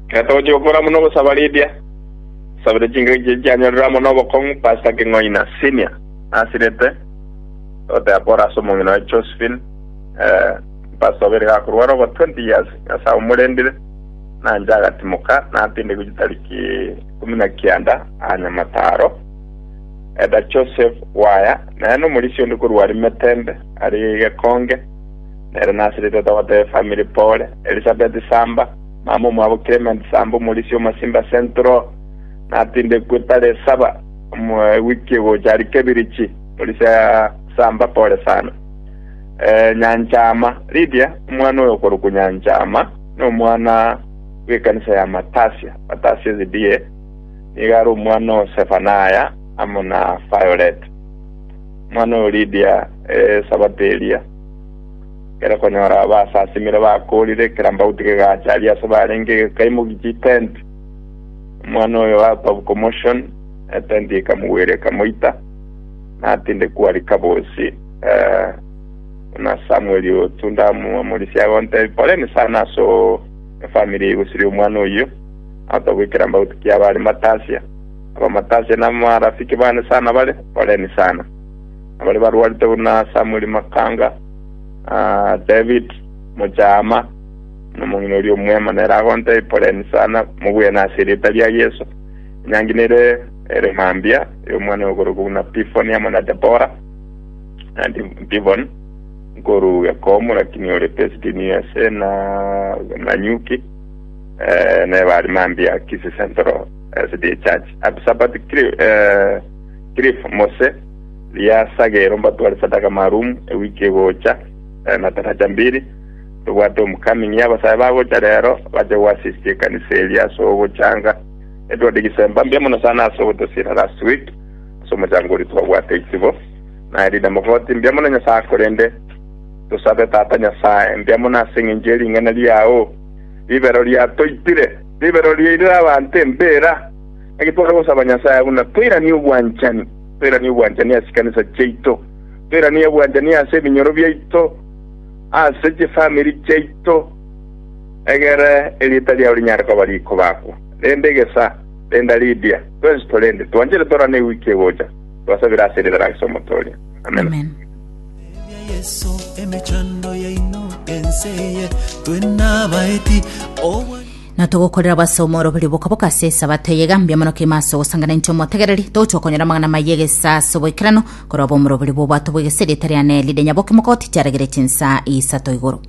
Ekero togochia gokora buna ogosaba Lydia, nsabire chingaki chiaito chianyorire amo na obokong'u Pastor King'oina, Senior, nasirete goteba pore ase omong'ina oye Josephine, eh, Pastor obeire gakorwara over 20 years, Nyasaye omorendire, nanche agatimoka, natindekwa chitariki ikomi na kianda aa Nyamataro, Elder Joseph Waya, nere nomorisia onde korwa Arimetembe, aria Gekonge, Nere nasire tata wa Taya family pole, Elisabeti Samba, mama omwabo Clement Samba omorisia omasimba ase Ntroa, natindekwe tare esaba ewiki egocha aria Kebirichi morisia Samba pole sana. Eh, Nyanchama, Lydia omwana oyo okorokwa Nyanchama nomwana bw'ekanisa ya Matasia, Matasia SDA, nigo are omwana o Sefanaya amo na Violet. Omwana oyo Lydia esabato eria. Ekero okonyora abasasimire bakoorire, ekerambauti kegacha aria ase barenge gekaimokia etenti. Omwana oyo out of commotion, etenti ekamogwera ekamoita, natindekwa rika bosii. Eh, buna Samuel otu ndamwamorisia agontebia, poleni sana ase o- efamily egosiria omwana oyio, out of ekerambauti kia abare matasia. Abamatasia namarafiki bane sana bare, poleni sana. Abare barwarete buna Samueli Makanga, David Mochaama, na omong'ina oria omwema, nere agontebia, Poleni sana, mogwene ase erieta ria Yeso. Enyangi nere ere mambia y'omwana oyokorokwa buna Pifoni amo na Debora, na Dibon, nkoruu Yakomu, lakini ore Pesdini ase na Nanyuki, eh, neba ari mambia Kisii Central SDA Church. Abisabati Kri- eh, Cliff Mose, riasagero mbatware sadaka marumu ewiki egocha, eh, na taraja mbiri, tobwate omokami ng'ia abasae bagocha rero bache goasistia ekanisa eria ase ogochanga. Etware egesemba mbuya mono sana ase ogotosiera last week ase omochango oria twabwate ichibo. Na erinde mogoti mbuya mono Nyasae akorende. Tosabe Tata Nyasae mbuya mono ase eng'encho ye ring'ana riao. Ribero riatoitire, ribero riairire abanto embera. Naki tware gosaba Nyasae buna toiranie obwanchani. Toiranie obwanchani ase chikanisa chiaito. Toiranie obwanchani ase eminyoro biaito, ase chifamiri chiaito. Egere erieta riao rinyare koba rikobakwa rende egesa, renda ridia. Twensi torende twanchete torane ewiki egocha. Twasabire ase erieta ria Yeso Omoto oria. Amena. Amen. Tebia Yeso emechando yaino ense eye, twe nabaeti, obwa Na togokorera obosoomi ore oborio boka-boka ase Esabato eye egambia mono kegima ase ogosanga na intwe omotegereri, togochia konyora amang'ana amaya egesaa ase oboikeranu, korwa obo omore oborio bw'obwato bw'egese erieta riane rire nyaboke mogotitia aregere chinsa isato igoro.